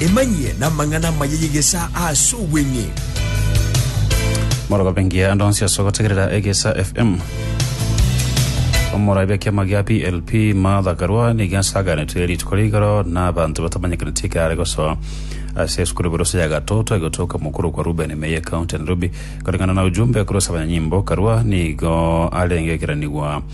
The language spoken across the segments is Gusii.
Emanyie namang'ana amaya y'egesaa ase obweng'e. Morogobe ngiya ande onsi ase ogotegerera Egesa FM. Omoraibia kiama gia PLP Martha Karua nigo asaganete rituko rigoro na abanto batamanyekaneti ekero are gosoa ase esukuru Burusa ya Gatoto egotoka mokuru kwa Ruben Meye County Nairobi. Koreng'ana na ujumbe korwa ase abanyanyimbo Karua nigo arenge ekeranigwa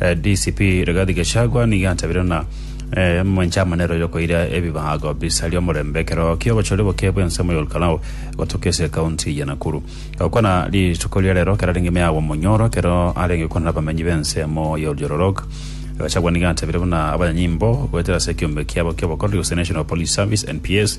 Eh, DCP Rigathi Gachagua nigo antabire ng'a eh, mwenche amanero yokoira ebibago bisaria omorembe ekero ki'obochori boke bw'ensemo y'Olkalau gotoka ase ekaunti ya Nakuru. Gokwana rituko ria rero ekero arenge meago omonyoro ekero arenge gokwana n'abamenyi b'ensemo y'Oljororok, Gachagua nigo antabire buna abanyanyimbo goetera ase ekiombe kiabo ki'obokoreri gose National Police Service, NPS,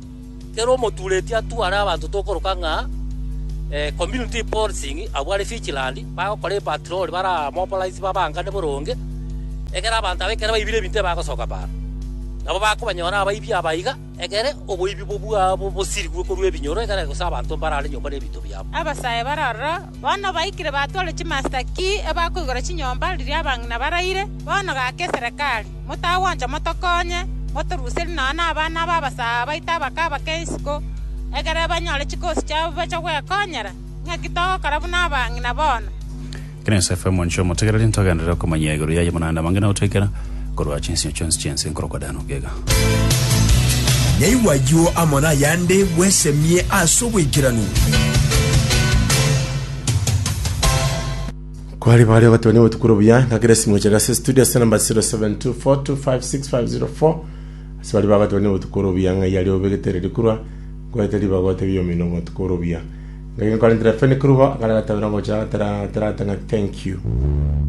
Kera omotureti atware abanto tokoroka ng'a community policing abwo are vigilant, bagokora epatrol bare abamobilize babangane boronge, egere abanto aba ekero baibire ebinto ebagosoka baano. Nabo bakobanyora abaibi aba iga, egere oboibi obwo bwabo bosirigwe korwa ebinyoro egere gose abanto mbarare nyomba nebinto biabo. Abasae bare aroro bono baikire batware chimasita ki ebakoigora chinyomba riria abang'ina baraire. Bono gaka eserekari. Motagwancha motokonye, motoruserie nonya nabana b'abasaa baito abakaba keisiko, egere banyore chikosi chiabo bache gwekonyera. Naki togokora buna abang'ina bono. Ekero Yosefu ere monchwa omotegereri, ntogenderere okomanyia igoro yaye, buna naende abange na gotoikera korwa chinsemo chionsi chi'ense nkorokwa Dano. Gega. Naigwa ayio amo nayande bwesemie ase oboikeranu. Kwari bare ogoteba nigo tukure buya ng'a kera esimo chia gase studio ase namba 0724256504 ase bari bagoteba nigo tukure buya ng'a yari obegete riri kurwa kwete ribaga otebia omino ng'a tukure buya ngaki nkorentera fene kirugo akare gatabera ngocha tera tera tera thank you